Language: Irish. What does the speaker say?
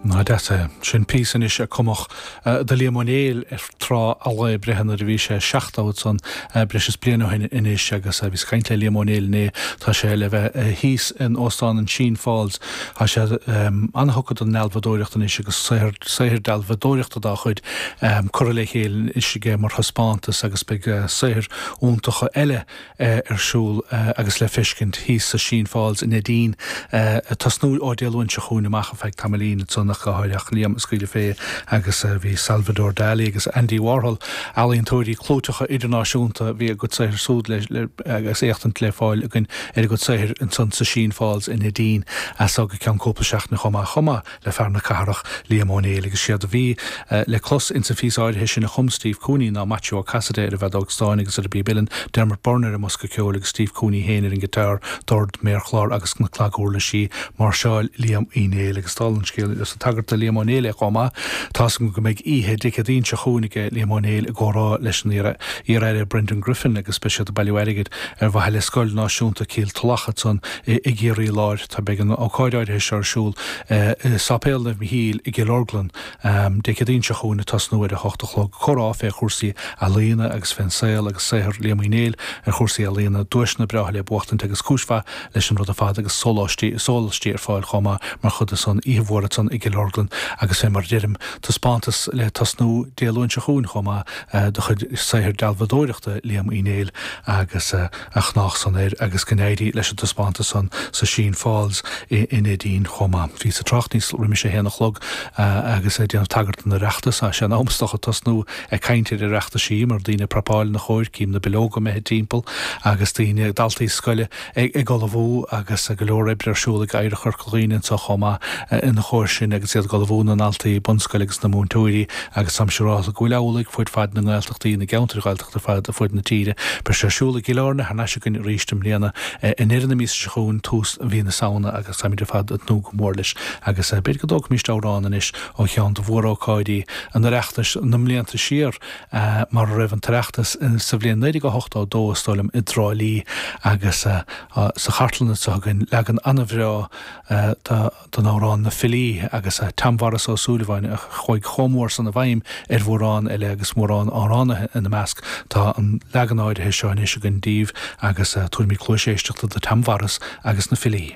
Ná deas é. Sin píosa anois a cumfadh do Liam Ó Néill ar thráth a lá breithe nuair a bhí sé seachtó ansan, breis is bliain ó shin anois agus bhíos ag caint le Liam Ó Néill inné. Tá sé le bheith thíos in Óstán an Sheen Falls. Tá sé an-thugtha don ndealbhadóireacht anois agus saothar saothar dealbhadóireachta dá chuid curtha le chéile anois aige mar thaispeántas agus beidh saothair iontacha eile ar siúl agus le feiscint thíos sa Sheen Falls i Neidín. Ag tosnú ó Dé Luain seo chugainn amach, ar feadh tamaillín, ansan ach go háirithe, Liam ag scaoileadh fé agus bhí Salvador Dali agus Andy Warhol, ealaíontóirí clúiteacha idirnáisiúnta, bhí a gcuid saothair súd le, agus éachtaint le fáil againn ar a gcuid saothair ansan sa Sheen Falls i Neidín as so go ceann cúpla seachtaine chomh maith. Chomh maith. le fear na cathrach, Liam Ó Néill, agus siad a bhí le clos ins an phíosa áirithe sin a chum Steve Cooney ná Maitiú Ó Casaide ar an bhfeadóg stáin agus ar an bpíb uilleann, Dermot Byrne ar an mbosca ceoil agus Steve Cooney féin ar an ngiotár, dord, méarchlár agus na cnaguirlisí, máirseáil Liam Uí Néill agus dála an scéil, is ag tagairt do Liam Ó Néill é chomh maith, tá's agam go mbeidh oíche Dé Céadaoin seo chugainn aige Liam Ó Néill i gcomhrá leis an iar-Aire Brendan Griffin agus beidh siad ag bailiú airgid ar mhaithe le scoil náisiúnta Cill Tulach ansan i gCiarraí Láir. Tá beidh an ócáid áirithe seo ar siúl i Sáipéal Naomh Mhíchíl i gCill Orglan Dé Céadaoin seo chugainn ag tosnú ar a h-ocht a chlog. Comhrá fé chúrsaí ealaíona agus fén saol agus saothar Liam Uí Néill ar chúrsaí ealaíona, duaiseanna breátha le buachtaint agus cúis mhaith leis an rud ar fad agus sóláistí is sólaistí ar fáil chomh maith mar chuid de son oíche mhór ansan i gCill Orglan agus fé mar a deirim taispeántas le tosnú Dé Luain seo chugainn chomh maith de chuid saothar dealbhadóireachta Liam Uí Néill agus a chonách san air agus go n-éirí leis an taispeántas san sa Sheen Falls i Neidín chomh maith. Bhíos ag trácht níos roimis a haon a chlog agus ag déanamh tagairt don Oireachtas. Sea, in am is dócha tosnú ag caint ar Oireachtaisí mar daoine ag prapáil ina chóir, cím na billeoga imithe timpeall agus daoine, daltaí scoile ag ullmhú agus go leor oibre ar siúl ag Oidhreacht Chorca Dhuibhne anseo chomh maith ina chóir sin agus iad ag ullmhú na ndaltaí bunscoile agus na múinteoirí agus táim siúrálta go bhfuil amhlaidh fud fad na nGaeltachtaí, na gceantair ar fad fud na tíre. Beidh sé ar siúl i gCill Airne thar n-ais againn arís i mbliana, i ndeireadh na míosa seo chugainn, tús mhí na Samhna agus táimid ar fad ag tnúth go mór leis agus b'fhéidir go dtógfaimíst amhrán anois ó cheann de mhór-ócáidí an Oireachtais na mblianta siar mar a raibh an tOireachtas sa bhliain naoi déag a hochtó dó is dóigh liom i dTrá Lí agus sa chartlann anseo againn leagan an-bhreá de don amhrán Na Filí agus Tom Mhaurice Ó Súilleabháin a chuaigh chomh mór san i bhfeidhm ar mhórán eile agus mórán amhránaithe ina measc. Tá an leagan áirithe seo anois againn daoibh agus tabharfaimid cluais éisteachta do Tom Mhaurice agus Na Filí.